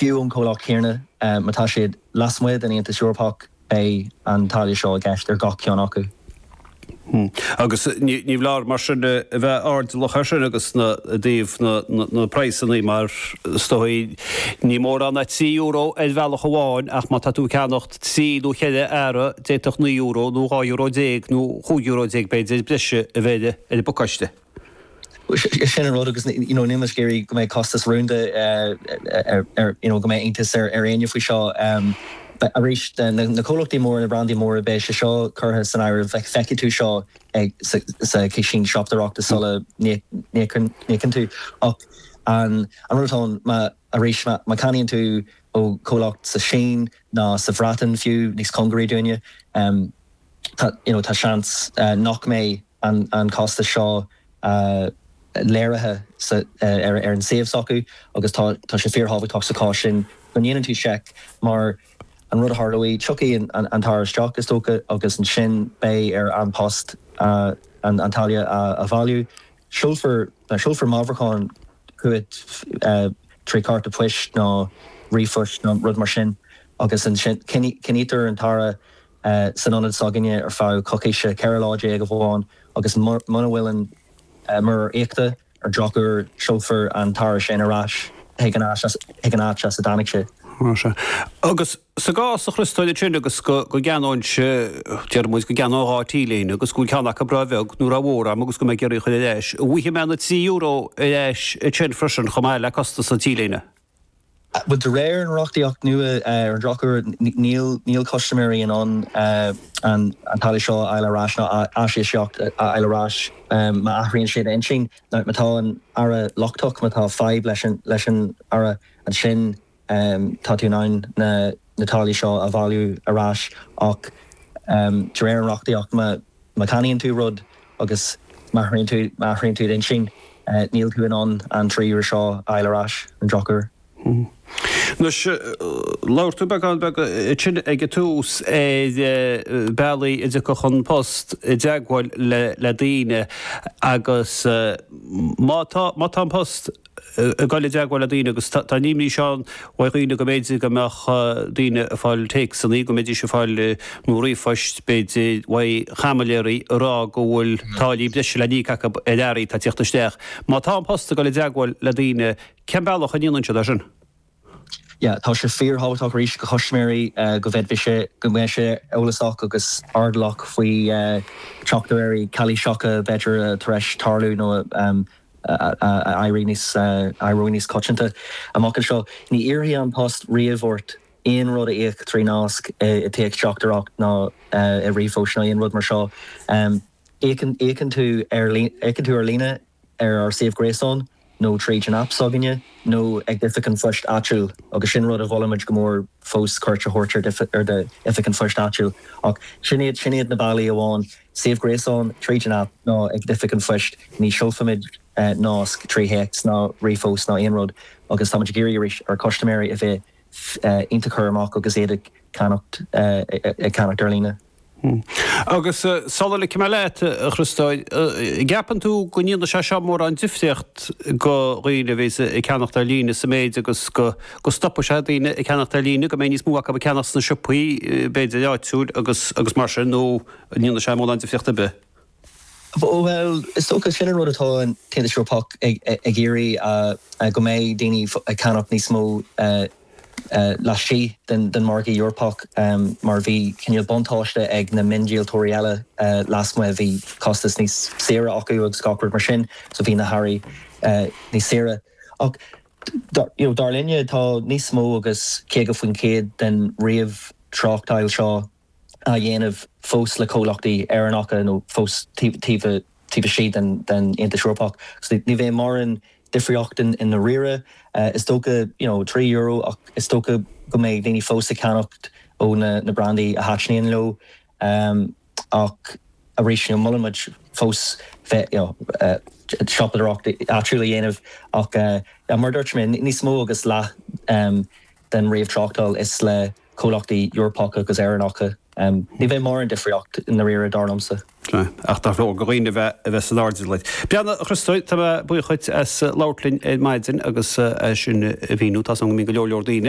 Fiú an comhlacht chéanna, má tá siad lasmuigh den Aontas Eorpach, beidh an táille seo i gceist ar gach ceann acu. Agus ní mór mar sin a bheith airdeallach air sin agus i dtaobh na praghsanna mar is dóigh ní mórán é trí euro ar bhealach amháin ach má tá tú ag ceannacht trí nó cheithre earra d'fhéadfadh naoi euro nó dhá euro déag nó chúig euro déag b'fhéidir breise a bheith ar an bpacáiste. Sin an rud agus níl muid ag iarraidh go mbeidh costas rúnda ar, you know go mbeidh iontas ar éinne faoi seo. Arís na comhlachtaí móra, na brandaí móra beidh sé seo curtha san áireamh, feicfidh tú seo sa chiseán siopadóireachta sula n-íocann tú ach an rud atá ann má, arís má ceannaíonn tú ó chomhlacht sa tSín nó sa Bhreatain fiú, níos cóngaraí dúinne, tá, you know tá seans nach mbeidh. an costas seo léirithe ar an suíomh s'acu agus tá sé fíorthábhachtach sa chás sin go ndéanann tú seic mar an rud a tharlóidh, tiocfaidh an t-earra isteach, is dócha, agus ansin beidh ar An Post an táille a bhailiú. Seolfar meabhrúchán chugat trí chárta poist nó ríomhphost nó rud mar sin agus ansin coinnítear an t-earra san ionad s'againne ar feadh coicíse, 14 lá amháin, agus muna bhfuil an muirear íochta ar drochuair, seolfar an t-earra sin ar ais chuig an áit as a dtáinig sé. Ó, sea. Agus sa gcás a Chríostóir ansin agus go gceannóinnse, déarfaidh muid go gceannóinn dhá T-léine agus go bhfuil ceann acu róbheag nó rómhór agam agus go mbeinn ag iarraidh a chur ar ais, an bhfaighidh mé na trí euro ar ais ansin freisin chomh maith le costas na T-léine. Bhuel de réir an reachtaíocht nua ar an drochuair níl custaiméirí in ann an táille seo a fháil ar ais nó aisíocaíocht a fháil ar ais má athraíonn siad a n-intinn nó má tá an t-earra lochtach. Má tá fadhb leis an earra ansin tá tú in ann na na táillí seo a bhailiú ar ais ach de réir an reachtaíocht má cheannaíonn tú rud agus má athraíonn tú d'intinn níl tú in ann an trí euro seo a fháil ar ais, ar an drochuair. Anois, labhair tú beagán beag ansin ag an tús ar bhealaí a dtiocfadh An Post i dteagmháil le daoine agus má tá An Post ag dul i dteagmháil le daoine agus tá an imní sin ann faoi dhaoine go mb'fhéidir go mbeadh daoine ag fáil téacsanna, go mbeidís ag fáil, nó ríomhphoist b'fhéidir, uaidh chaimiléirí ag rá go bhfuil táillí breise le n-íoc acu ar earraí atá ag teacht isteach. Má tá An Post ag dul i dteagmháil le daoine, cén bealach a ndéanann siad é sin? Tá sé fíor thábhachtach arís do chustaiméirí go bhfeidfidh, go mbeidh siad eolasach agus airdeallach faoi theachtaireachtaí calaoiseacha b'fhéidir atá tar éis tarlú nó ag éirí níos coitianta amach anseo. Ní iarrfaidh An Post riamh ort aon rud a íoc trí nasc i dtéacsteachtaireacht ná i ríomhphost ná aon rud mar seo. Íocann tú ar líne. ar ár suíomh gréasáin nó tríd an aip s'againne nó ag d'oifig an phoist áitiúil agus sin rud a mholaimid go mór fós, cuairt a thabhairt ar d'oifig an phoist áitiúil. Ach sin iad, sin iad na bealaí amháin, suíomh gréasáin, tríd an aip nó ag d'oifig an phoist. Ní seolfaimid nasc trí théacs ná ríomhphost ná aon rud agus táimid ag iarraidh arís ar chustaiméirí a bheith iontach cúramach agus iad ag ceannacht ar líne. Agus sula ligfidh mé leat, a Chríostóir, an gceapann tú go ndéanfaidh sé seo mórán difríocht do dhaoine a bhíos ag ceannacht ar líne sa méid agus go stopfaidh sé daoine ag ceannacht ar líne, go mbeidh níos mó acu ag ceannacht sna siopaí b'fhéidir áitiúil agus mar sin nó an ndéanfaidh sé mórán difríocht ar bith? Bhuel, is dócha, sin an rud atá an tAontas Eorpach ag iarraidh, go mbeidh daoine ag ceannacht níos mó laistigh den mhargadh Eorpach mar bhí cineál buntáiste ag na miondíoltóirí eile lasmuigh, bhí costas níos saoire acu agus gach rud mar sin, so bhí na hearraí níos saoire. Ach dar linne, tá níos mó agus 50% den ríomhthráchtáil seo á dhéanamh fós le comhlachtaí Éireannacha nó fós taobh istigh den Aontas Eorpach. So ní bheidh mórán difríocht ann i ndáiríre. Is dócha you know trí euro ach is dócha go mbeidh daoine fós ag ceannacht ó na na brandaí a thaitníonn leo. Ach arís you know molann muid fós bheith you know siopadóireacht áitiúil a dhéanamh ach mar a dúirt mé níos mó agus leath den ríomhthráchtáil is le comhlachtaí Eorpacha agus Éireannacha. Ní bheidh mórán difríocht ann i ndáiríre, dar liomsa. Sea, ach tá ar dhaoine a bheith a bheith san airdeall. Bhuel, a Chríostóir, tá mé buíoch duit as labhairt linn ar maidin agus as sin a mhíniú. Tá a fhios agam go mbíonn go leor leor daoine.